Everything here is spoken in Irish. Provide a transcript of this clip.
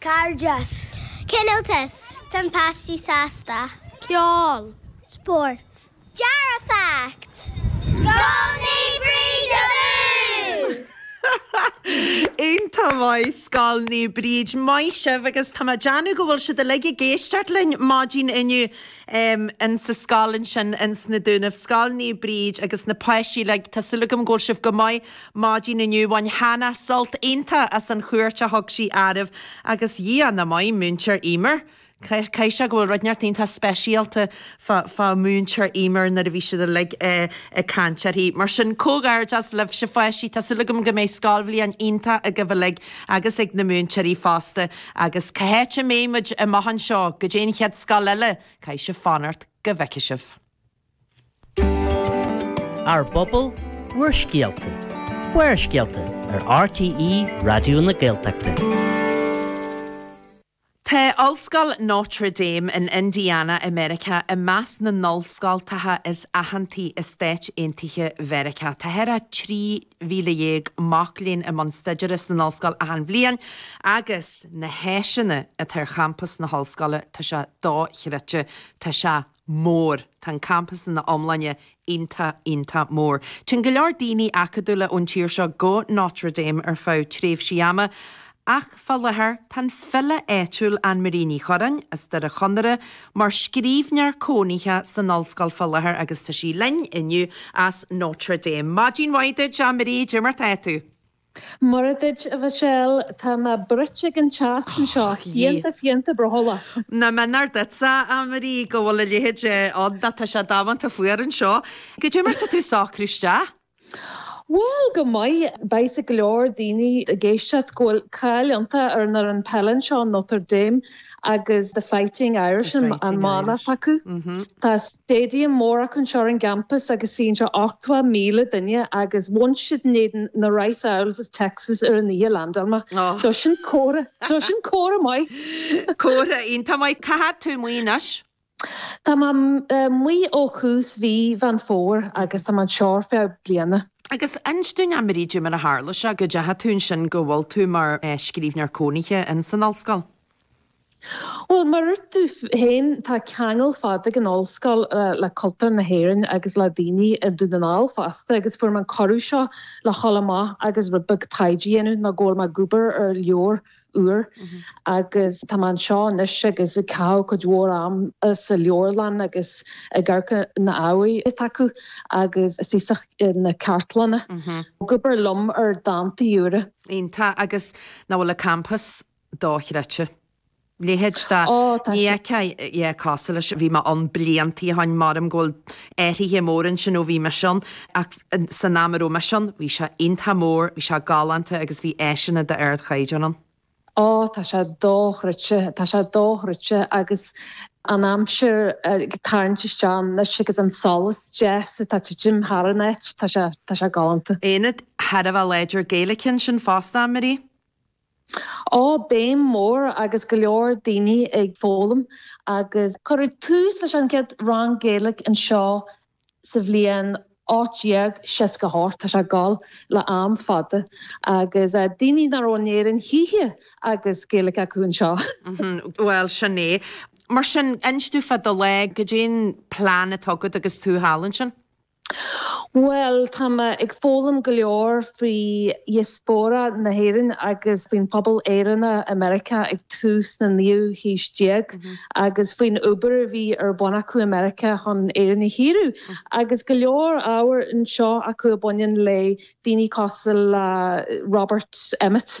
Cairdeas. Cineáltas. Tá na páistí sásta. Ceol. Spórt. Dearfacht. Scoil Naomh Bríd abú! Iontach maith Scoil Naomh Bríd, maith sibh agus tá mé ag déanamh go bhfuil siad uilig ag éisteacht linn maidin inniu in sa scoil ansin ins na Dúnaibh, Scoil Naomh Bríd agus na páistí uilig tá súil agam go bhfuil sibh go maith. Maidin inniu bhain Hannah sult iontach as an chuairt a thug sí oraibh agus a Dhia nach maith, Múinteoir Emer. Caithfidh sé go bhfuil rud inteacht iontach speisialta fá fá Múinteoir Emer nuair a bhí siad uilig ag caint uirthi. Mar sin, comhghairdeas libhse pháistí, tá súil agam go mbeidh scoilbhliain iontach agaibh uilig agus ag na múinteoirí fosta. Agus cá háit a mbeidh muid amach anseo go dtí an chéad scoil eile, caithfidh sibh fanacht. Go bhfeice sibh. Ár bpobal, bhur scéalta. Barrscéalta ar RTÉ Raidió na Gaeltachta. Tá Ollscoil Notre Dame in Indiana i Meiriceá i measc na n-ollscoilteacha is aitheantaí i Stáit Aontaithe Mheiriceá. Tá thar 13,000 mac léinn i mbun staidéara san ollscoil achan bhliain agus na háiseanna atá ar champas na hollscoile, tá sé dóchreidte, tá sé mór. Tá an campas ina iomláine iontach, iontach mór. Téann go leor daoine acadúla ón tír seo go Notre Dame ar feadh tréimhsí ama, ach fá láthair tá an file áitiúil Annemarie Ní Churreáin, as Doire Chonaire, mar scríbhneoir cónaithe san ollscoil fá láthair agus tá sí linn inniu as Notre Dame. Maidin mhaith duit, a Annemarie, caidé mar atá tú? Mora duit, a Mhichelle, tá mé bruite ag an teas anseo, Och je. fiánta fiánta brothallach. Nach méanar duitse, Annemarie, go bhfuil a leithéide ann, tá sé damanta fuar anseo. Caidé mar tá tú ag socrú isteach? Bhuel, go maith. Beidh a fhios ag go leor daoine ag éisteacht go bhfuil cáil iontach ar an fhoireann peile anseo, Notre Dame, agus The Fighting Irish an mana atá acu. Tá Staidiam mór acu anseo ar an gcampas agus suíonn sé 80,000 duine agus bhain siad in éadan na Rice Owls is Texas ar an oíche a landáil mé. Do sin comhartha, do sin comhartha maith! Comhartha iontach maith. Cá fhad tá tú amuigh anois? Tá mé amuigh ó thús mhí Mheán Fómhair agus tá mé anseo ar feadh bliana. Agus inis dúinn, Annemarie, caidé mar a tharla sé, go dteachaidh tú ansin go bhfuil tú mar scríbhneoir cónaithe ins an Ollscoil? Bhuel, mar a dúirt tú féin, tá ceangal fada ag an ollscoil le cultúr na hÉireann agus le daoine i nDún na nGall fosta agus fuair mé an cuireadh seo le dhul amach agus rud beag taighde a dhéanamh mar go bhfuil mé ag obair ar leabhar úr agus tá mé anseo anois agus ag caitheamh cuid mhór am sa leabharlann agus ag amharc ar na hábhair atá acu agus thíos sna cartlanna. Ag obair liom ar dántaí úra. Iontach. Agus nach bhfuil an campas dochreidte. Leithéid de Ó, tá ní sé. fheicfeadh, yeah, casadh leis, bhí mé ann blianta ó shoin, mh'anam go bhfuil athraithe móra ansin ó bhí mise ann, ach san am a raibh mise ann, bhí sé iontach mór, bhí sé galánta agus bhí áiseanna d'ardchaighdeán ann. Ó, tá sé dochreidte, tá sé dochreidte agus an aimsir ag tarraingt isteach anois agus an solas deas atá ag titim thar an áit, tá sé, tá sé galánta. Ionad thar a bheith láidir Gaeilge ansin fosta, a Marie? Ó, béim mhór agus go leor daoine ag foghlaim agus cuireadh tús leis an gcéad rang Gaeilge anseo sa bhliain 1868, tá sé ag gabháil le am fada, agus daoine nach raibh in Éirinn choíche agus Gaeilge acu anseo. Bhuel, sin é. Mar sin, inis dúinn fá do lá, goidé'n plean atá agat agus tú thall ansin? Bhuel, tá mé ag foghlaim go leor faoi dhiaspóra na hÉireann agus faoin phobal Éireannach i Meiriceá ag tús na naoú haois déag agus faoin obair a bhí ar bun acu i Meiriceá chun Éirinn a shaoradh agus go leor ábhar anseo acu a bhaineann le daoine cosúil le Robert Emmet.